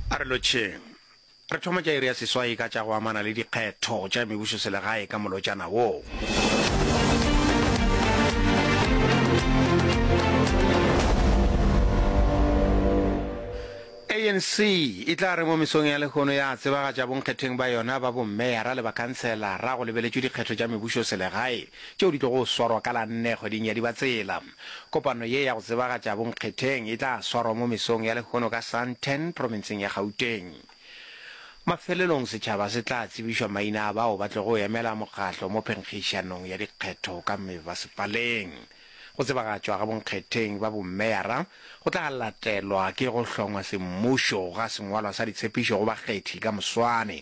a re lotšheng re thoma tša iri ya seswai ka tša go amana le dikgetho tša mebušo selegae ka molotšana woo anc e tla re mo mesong ya lehono ya tsebagatša bonkgetheng ba yona ba bommeyara le bakhantsela ra go lebeletšwe dikgetho tša mebušo selegae tšeo di tlogo swarwa ka la nne kgweding ya dibatsela Kopano ye ya go tsebagatša bonkgetheng e tla swarwa mo mesong ya lehono ka Sandton, profenseng ya Gauteng. Mafelelong setšhaba se tla tsebišwa maina a bao ba tlogo emela mokgatlo mo phenkgišanong ya dikgetho ka mebasepaleng. Go tsebagatšwa ga bonkgetheng ba bomeyara go tla latelwa ke go hlongwa semmušo ga sengwalwa sa ditshepišo go bakgethi ka moswane.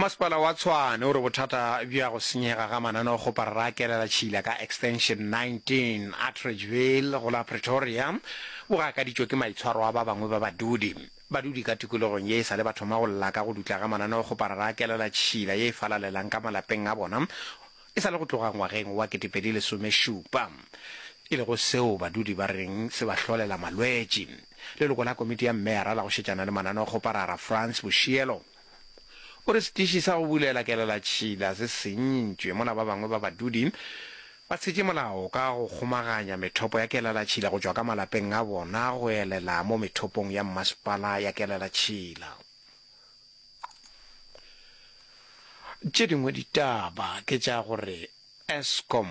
Masepala wa Tshwane o re bothata bja go senyega ga mananeo go parakelela tšhila ka Extension 19, Atteridgeville, go la Pretoria, bo gakaditšwe ke maitshwaro a ba bangwe ba badudi. Badudi ka tikologong ye e sa le ba thoma go lla ka go dutla ga mananeo go parakelela tšhila ye e falalelang ka malapeng a bona e sa le go tloga ngwageng wa 2017, e lego seo badudi ba reng se ba hlolela malwetši. Leloko la komiti ya meyara la go šetšana le mananeo go parara, Frans Boshielo, O re setiši sa go bulela kelelatšhila se senyintšwe mola ba bangwe ba badudi ba tshetše molao ka go kgomaganya methopo ya kelelatšhila go tšwa ka malapeng a bona go elela mo methopong ya mmasepala ya kelelatšhila. Tše dingwe ditaba ke tša gore Eskom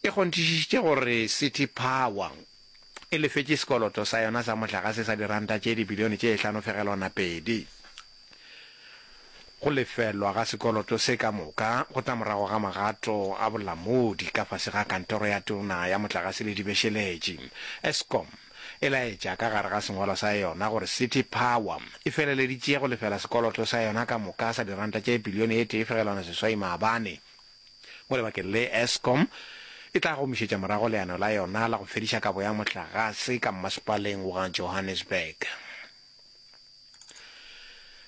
e kgonthišišitše gore City Power e lefetše sekoloto sa yona sa mohlagase sa diranta tše dibilione tše hlano-fegelwana-pedi. Go lefelwa ga sekoloto se ka moka go tla morago ga magato a bolamodi ka fase ga Kantoro ya Tona ya Motlagase le Dibešeletši, Eskom e laetša ka gare ga sengwalo sa yona gore City Power e feleleditše go lefela sekoloto sa yona ka moka sa diranta tše bilione e tee-fegelwana-seswai-maabane. mo lebakeng le Eskom e tla gomišetša morago leano la yona la go fediša kabo ya mohlagase ka mmasepaleng wa Johannesburg.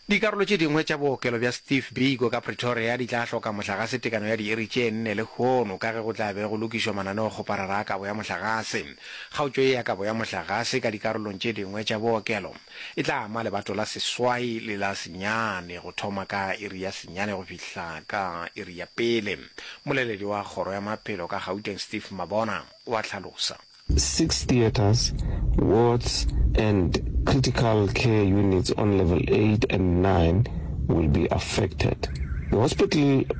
Dikarolo tše dingwe tša bookelo bja Steve Biko ka Pretoria di tla hloka mohlagase tekano ya diiri tše nne lehono ka ge go tla be go lokišwa mananeokgoparara a kabo ya mohlagase. Kgaotšo ye ya kabo ya mohlagase ka dikarolong tše dingwe tša bookelo, E tla ama lebato la seswai le la senyane go thoma ka iri ya senyane go fihla ka iri ya pele, mmoleledi wa kgoro ya maphelo ka Gauteng Steve Mabona o a hlalosa. Six theatres, wards and critical care units on level eight and nine will be affected. The hospital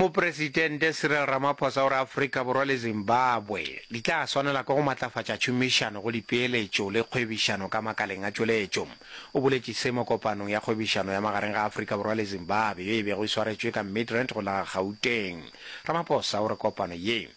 Mopresidente Cyril Ramaphosa o re Afrika Borwa le Zimbabwe di tla swanela ke go matlafatša tšhomišano go dipeeletšo le kgwebišano ka makaleng a tšweletšo. O boletše se mo kopanong ya kgwebišano ya magareng ga Afrika Borwa le Zimbabwe yo e bego e swaretšwe ka Midrand go la Gauteng. Ramaphosa o re kopano ye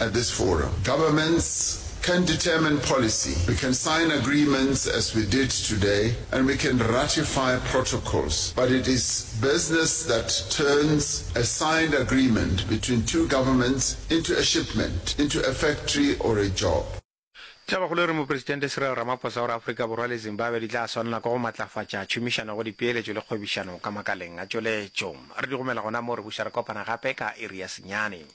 at this forum. Governments can determine policy, we can sign agreements as we did today and we can ratify protocols but it is business that turns a signed agreement between two governments into a shipment, into a factory or a job. Thabakgolo e re Mopresidente Cyril Ramaphosa o re Afrika Borwa le Zimbabwe di tla swanela ke go matlafatša tšhomišano go dipeeletšo le kgwebišano ka makaleng a tšweletšo. Re di gomela gona mo re buša re kopana gape ka iri ya senyane.